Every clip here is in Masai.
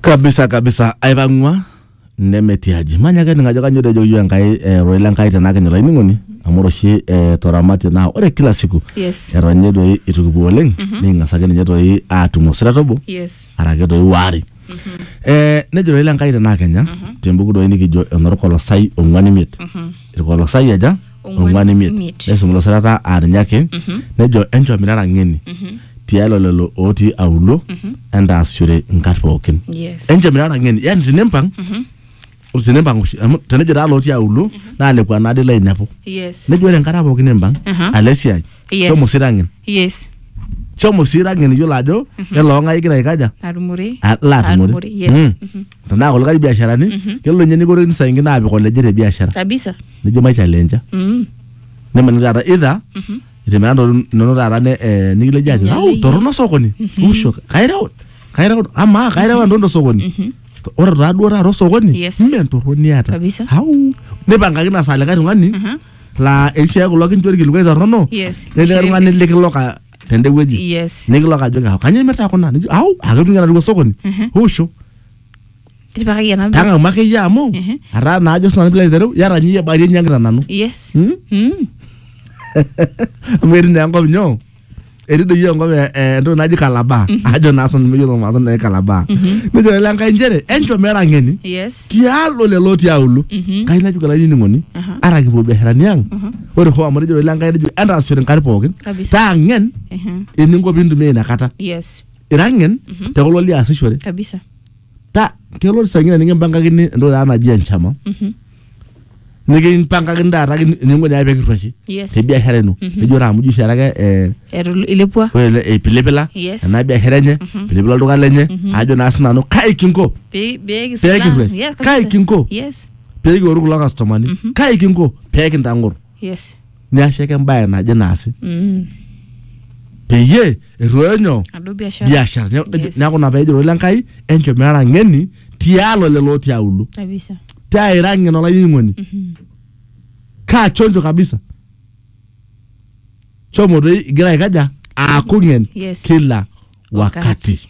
kabisa kabisa aipang'ua nemetiaji manya ake ningajo kanyo tejo yu enkai eh, roi lenkai tenaa kinyo laining'oni amu ore oshi eh, toramatie naa ore kila siku Yes. eton ninye toi itu kipuo oleng niking'as ake ninye toi aatum osira tobo Yes. arake toi waare eh, nejo roi lenkai tenaa kenya tembuku doi nikijo enorkolosai ong'uan imiet irkolosai aja ong'uan imiet neisum ilo sirata aa ninye ake nejo enchomirara ng'eni tialo lelo ootii auluo entaasishore nkat pookin Yes. enchomirara ng'eni yani tinimpang ore tinimpang oshi amu tenejo taa lootii auluo naa lekua naade lainepu yes nejo ore enkata pookin nimpang Aha. alo esiai Yes. shomo sira ang'en Yes. shomo sira ang'en iyiolo ajo kelo ong'ae igira aikaja Atumore. Ah, la atumore Atumore, yes. Mm. Mhm. tenaa kulikae biasharani kelo ninye nikorokini saa ingine aapik oleje te biashara Kabisa. nijo maichalenja Mm. nemani taata idha itimira ntokitin inonok taata ne- eh, nikileji ajo Nyale au iyie." torrono sokoni usho kaireu kaireu amaa kaireu entoki tosokoni ore taaduo taata osokoni Yes. mme entorroni eeta Kabisa. au nipangakaki na saa likae tung'ani laa eishia kulo kincho ilkilikuai torrono Yes. netii oltung'ani likiloka tende wueji Yes. nikiloka ajoki au kanyoo imirta kuna nijo au aketu ng'ira atua osokoni usho Tipikaki ena mbe- tang'amu akeyie amu Mhm. ataa naa ajo sinanu pilo aitereu yata ninye iyie barie ninye enkita nanu Yes. Hmm? Mm. amu etii naa enkop nyoo etidoyio enkop e- e- entoki naji kalabaa ajo naa sanu meyiolo maasa naji kalabaa nejo lele enkai nchere enchom mera ng'eni yes tialo lelo tiaulu kai najuka lainining'oni Aha. ara kipuo biasharani ang ore hoo amu etejo lele enkai nejo entaasishore nkari pookin Kabisa. taa ng'en Ehe. eninko pintumia inakata yes ira ng'en te kulo liasishore kabisa ta kelo isang'ina nikimpangakini entoki taata naji enchama Mhm. nikimpangakini taata kin- eninko naa pekirruashi Yes. te biashara ino ejo taa amu ijo oshi taata ke eh, Etu- ilepua ore ele eipilipila Yes. ena biashara enye pilipila olduka lenye ajo naa sinanu kai kinko Pe- pee kisula. Pee kirruash. Yes, Kai kabisa. kinko? yes pekiworu kulo kastomani kai kinko pekintang'or Yes. niasie ake embae naje naasi Mm. peyie erruoyo nyoo Adu biashara. biashara Ne- Yes. neeku ina peejo ilo Enkai enchom irara ng'eni tialo lelo otii auluo Kabisa. taa ira ng'en olainining'oni kaa chonjo kabisa shomo toi igira aikaja aaku ng'en Yes. kila wakati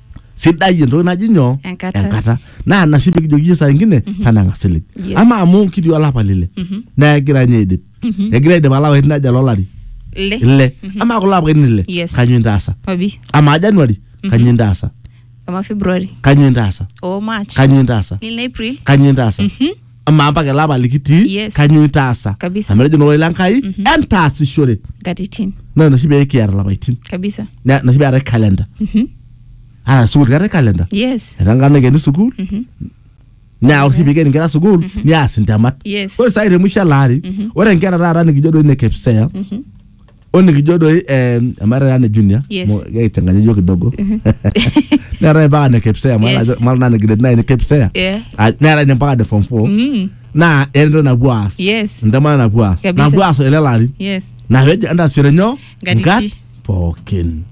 sidai entoki naji nyoo Enkata. naa ina oshi pikijoki iyie saa ingine tanang'a silig Yes. ama amu kitii olapa lile naa egira ninye aidip egira aidip alapaitin aja lolari Le. ile ama kulo apaitin ile Yes. kanyoo intaasa Obi. ama januari kanyoo intaasa Kama February. kanyoo intaasa O March. kanyoo intaasa Nil April. kanyoo intaasa amaa mpaka ele apa likitii Yes. kanyoo itaasa Kabisa. amu etejo noloi le Nkai entaasishore nkatitin naa ina oshi pee kiata ilapaitin kabisa Na- ina oshi pee eetae calendar ata sukuul keetae calendar yes etaa nkata naikeni sukuul naa ore oshi pee ikeni nkera sukuul niaas intemat Yes. ore sai te mwisho ele ari ore nkera taata nikijo doi ne KPSEA o nikijo doi eh, emaata taa ne junior Yes. mo- keiteng'ani iyiok kidogo neetae mpaka ne kepsea Yes. mara naa ne grade nine kepsea Yeah. Ah, neetae ne mpaka ne form four Mm. naa entoki napuo aas Yes. ntemata napuo aas Kabisa. napuo aas ele lari Yes. naa pejo entasere nyoo Nkatiti. nkat pookin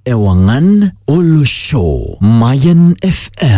Ewangan Olosho Mayan FM